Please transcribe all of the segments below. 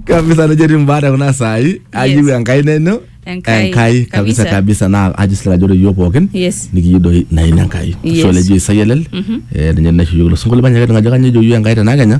kabisa nejo etii mbaa te kuna saai ayieu enkai neno Enkai. enkai kabisa Kabisa. kabisa naa ajo sila ajo ore iyiook pookin Yes. nikiyieu doi naini enkai Yes. sole ejo isai elel eh, ninye naisho iyiook ilo sinkolio manyaka ajo kanyioo ejo iyiook enkai tenakenya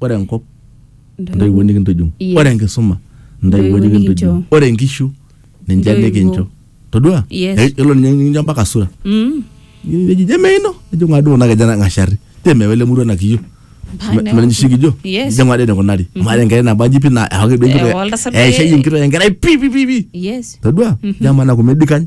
Ore enkop, intoiwuo nikintujung. Yes. Ore enkisuma, intoiwuo Intoiwuo nikintujung. nikincho. Ore inkishu, ninche Intoiwuo. nikincho. Todua? Yes. Eh, Elo ninye nikincho mpaka sura. Mm. Neji, je meino? Nejo ng'adu kuna keja nang'ashari. Je mewa ele murua nakiyo? Mpaka newa. Menisho kijo? Yes. Je ng'adu enikunari? Amu ata enkerai nabo aji pi naa ewaki duo enkitok. Ewa oltasat Eh, ishayie enkitok enkerai pi pi pi pi. Yes. Todua? Je amaa naku medikany?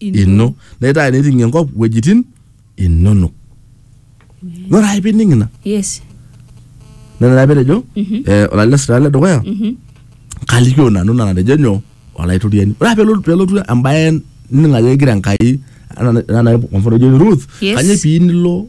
ino naitaa eneting enkop wuejitin inonok ore ake pining ina yes nena taa petejo eh, olalesi taa ledukuya kalikio nanu nana natejo nyoo olaitoriani ore ake pelo- pelotu embaye nining ajo kegira enkai anaa- anaa kwa mfano ejo Ruth Yes. kanyoo pii nilo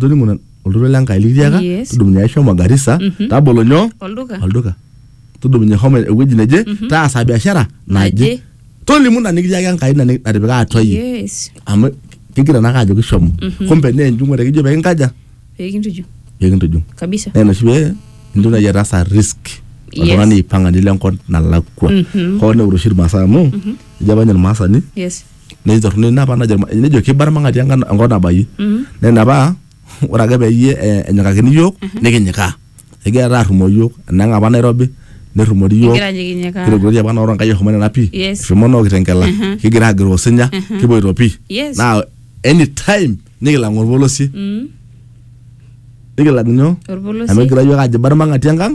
tolimu na- oltoilo le Nkai likitiaka Yes. tudumunye ai shomo Garissa Mhm. tabolo nyoo olduka olduka tudumunye homo ewueji neje taasa biashara naje Naje. tolimu ina nikitiaka Enkai ina ni- natipika atua iyie yes amu kigira naake ajo kishomo kumbe naa enjung'ore kijo pekinkaja pekintuju pekintujung kabisa naa inoshi pee intoki naaji ataasa risk Yes. oltung'ani aipang'a nilo enkop nalakua Mhm. hoo neure oshi irmaasai amu ejo apa ninye irmaasani yes netii torrono ina apa najo ilma- nejo kibarmang'ati enkan- enkop nabayie naa ina paa ore ake peyie eh, enyikakini iyiook nikinyikaa egira taata arrumoo iyiook enang apa nairobi nerrumori iyiook Egira anyikinyikaa. kirogirori apa naoro enkai eshomo nena pii Yes. eshomo noo kitenkela kigira agiroo osinya kipoito pii Yes. naa anytime nikilang orpolosie nikilang nyoo amu Orpolosie. egira iyiook ajo ibarmang'ati enkang